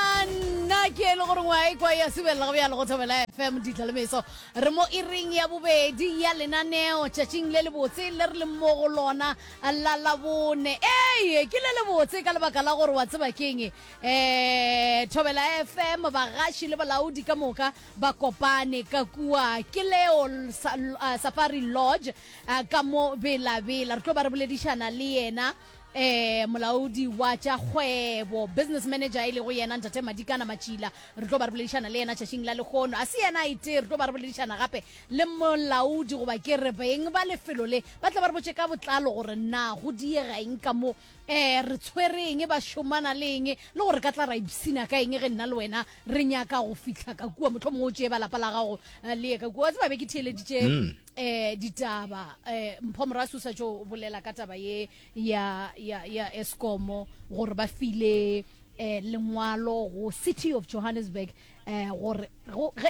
nna ke e le gore ngwa e kwa ya subelela go bjalo go thobela fm ditla le meso re mo iring ya bobedi ya lenaneo tšatšing le lebotse le re le mo go lona la labone ee ke le lebotse ka lebaka la gore wa tseba keng um thobela fm bagaši le balaodi ka moka ba kopane ka kua ke leo Sa- ah, safari lodge ah, ka mo belabela re tlo ba re boledišana le yena eh molaodi wa tša kgwebo business manager e lego yena ntate madikana matšila re tlo ba re boledišana le yena tšatšing la lekgono a se yena a itee re tlo ba re boledišana gape le molaodi goba ke re beng ba lefelo le ba tla ba re botse ka botlalo gore na go diega eng ka mo um re tshwere eng ba šomana le eng le gore ka tla ra ipsina ka eng ge nna le wena re nyaka go fitlha ka kua motlho mongwe o tšee ba lapa la gago eh, le ye ka kua wa tseba be ke theeleditše mm. eh ditaba eh mpho morasu sa jo bolela ka taba ye ya ya ya Eskom gore ba file eh lengwalo go city of Johannesburg eh gore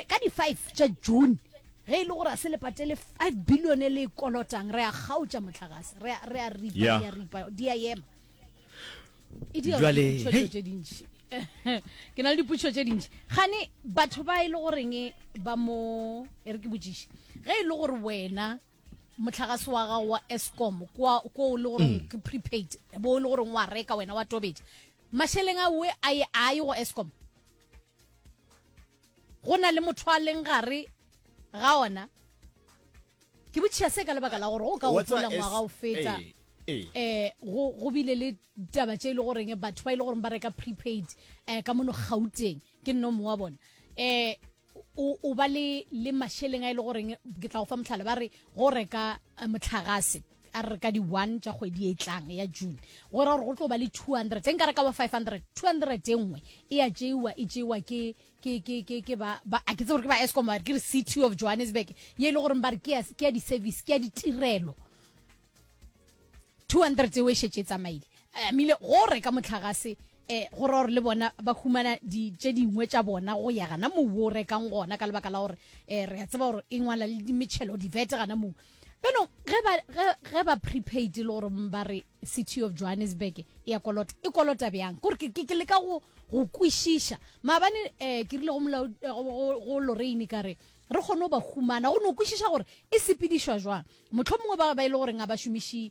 ka di 5 tša June ge e le gore a se le patele 5 billion le kolotang re a gautša motlagase re a ripa di a ripa di a yema e dira Jwale, dipotšo hey. tše dintši ke na le dipotšo tše dintši gane batho ba e le goreng ba mo e re ke botšiše ge e le gore wena motlhagase wa gago wa escom kwa ko o le goreng ke prepaid bo o le goreng wa reka wena wa tobetša mašeleng a we a ye a ye go escom go na le motho a leng gare ga ona ke botšhia se ka lebaka la gore o ka gopola ngwaga o feta eh go bile le taba tše e le goreng batho ba e le goreng ba reka prepaid um ka mono gauteng ke nno mongwe wa bona um o ba le mašeleng a e le goreng ke tla go fa motlhala ba re go reka eh, motlhagase a re ka di-one tša kgwedi e tlang ya june go ra gore go tlo ba le two hundred e nka re ka ba five hundred two hundred e nngwe e ya tšeiwa e tšeiwa ke ke ke ke ke ba ba a ke tse gore ke ba escom ba ke re city of johannesburg ye e le goreng ba re ke ya di-service ke ya ditirelo 200 tseo e šetse e tsamaile eh, amile gore ka motlhagase eh go ra gore le bona ba humana di tše dingwe tša bona go ya gana mou o rekang gona ka lebaka la gore eh re a tseba gore e ngwala le dimetšhelo divete gana mou beno ge ba ge, ge ba prepaid le gore ba re city of johannesburg e ya kolota e kolota bjang kore ke, ke, ke leka go go kwešiša maabane um eh, ke rile go, molao, eh, go, go, go loreine ka re re kgone go ba humana go no kwešiša gore e sepedišwa jwang mohlho mongwe ba ba e le goreng a ba šomiši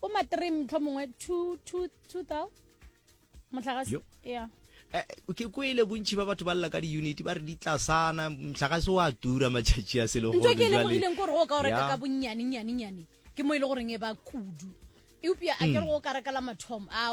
bo ma three motlho mongwe two two two thou motlhagase ya eh, ke kwele bontšhi ba batho ba lela ka di-unity ba re di tlasana motlhagase wa tura matšhatši a selegontho ke lemogileng kore o ka o reka ka bonnyane nyane nyane ke mo e le goreng e ba kudu eupša a kere mm. go ka rekela mathomo a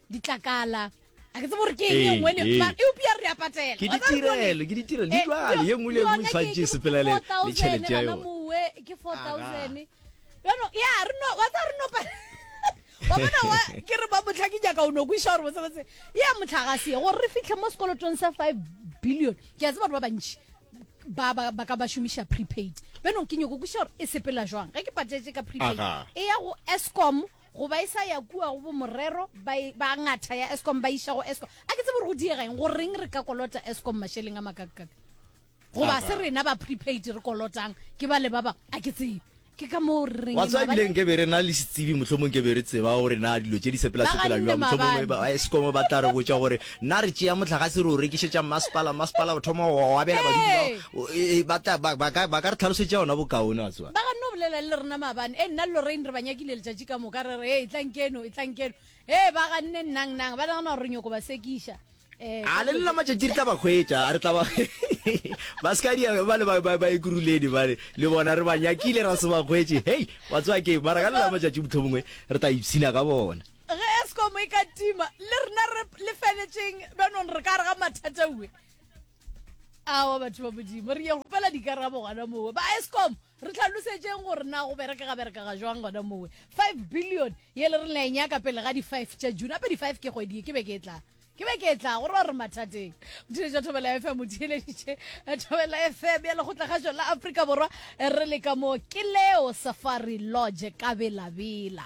ditlakala a ke tsebo gore ke eng e nngwe ne ba e upia re a patela ke ditirelo ke ditirelo di tlwale ye nngwe le nngwe tshwantse sepela le le tšhelete ya yone mowe ke 4000 yono ya re no wa tsa re no pa wa bona wa ke re ba motlha ke nyaka o no kwisha gore botse botse ya motlha ga se gore re fitlhe mo sekolotong sa 5 billion ke a tseba gore ba bantši ba ba ba ka ba shumisha prepaid beno ke nyoko kwisha gore e sepela jwang ge ke patetse ka prepaid e ya go escom go ba e sa ya kua go bomorero ba e- ba ngatha ya escom ba iša go escom a ke tsebe gore go diega eng goreng re ka kolota escom mašeleng a makakakaka goba se rena ba prepaid re kolotang ke ba le ba bangwe a ke tsebe ke ka moo re reng wa tseba mabale- ebile nke be re na le setsebi mohlomong ke be re tseba gore na dilo tše di sepela Ba sepela ganne jwang mohlomongwe mabane. ba escom ba tla re botša gore Nna re tšea mohlagase re o rekišetša mmasepala, mmasepala o thoma go o abela badudi bao. Ee, ba tla, ba, ba ka, ba ka re tlhalošetša ona bokaone, wa tseba. Ba ganne go bolela le rena maabane. Ee, nna le Lorraine re ba nyakile letšatši ka moka, re re, Ee, etlang keno, etlang keno. Ee, ba ganne, Nnang, nnang. Ba nagana gore re nyoko ba sekiša. Ee, ka A le dilo nna tše. matšatši re tla ba hwetša, re tla ba ba se ka dia ba le ba, ba, ba ekuruleni bale, le bona re ba nyakile ra se ba hwetše. Hei, wa tseba keng, mara ka le nna matšatši mohlomongwe re tla ipshina ka bona. Ge Eskom e ka tima, le rena re lefeletšeng bjanong re ka re ga mathataue. Awa batho ba Modimo, re ye gopela dikarabo gona mowe. Ba Eskom, re tlhalosetšeng gore na go bereka ga bereka ga jwang gona mowe. 5 billion ye le re la e nyaka pele ga di-five tša June, gape di-five ke kgwedi ye, ke be ke e tla ke be ke tla gore ba re mathateng mothiletša ja thobela fm o theeleditše eh, thobela fm ya lekgotlakgašo la afrika borwa eh, re le ka mo ke leo safari lodge ka belabela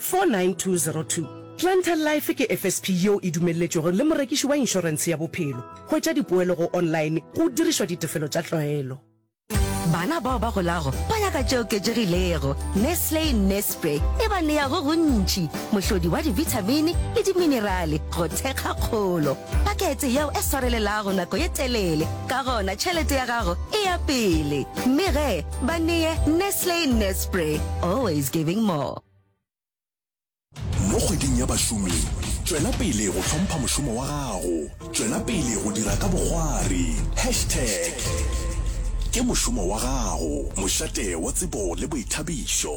49202. Planter Life ke FSP yeo e dumelletšwego le morekiši wa inšorense ya bophelo. Hwetša dipoelo go online go dirišwa ditefelo tša tlwaelo. Bana bao ba golago ba nyaka tše oketšegilego. Nestle Nespre e ba nea go gontši, mohlodi wa dibithamini le diminerale go thekga kgolo. Pakete yeo e swarelelago nako ye telele, ka gona tšhelete ya gago e ya pele. Mme ge ba neye Nestle Nespre, always giving more. Mo kgweding ya bašomi, tšwela pele go hlompha mošomo wa gago. Tšwela pele go dira ka bogwari. Hashtag Ke mošomo wa gago, mošate wa tsebo le boithabišo.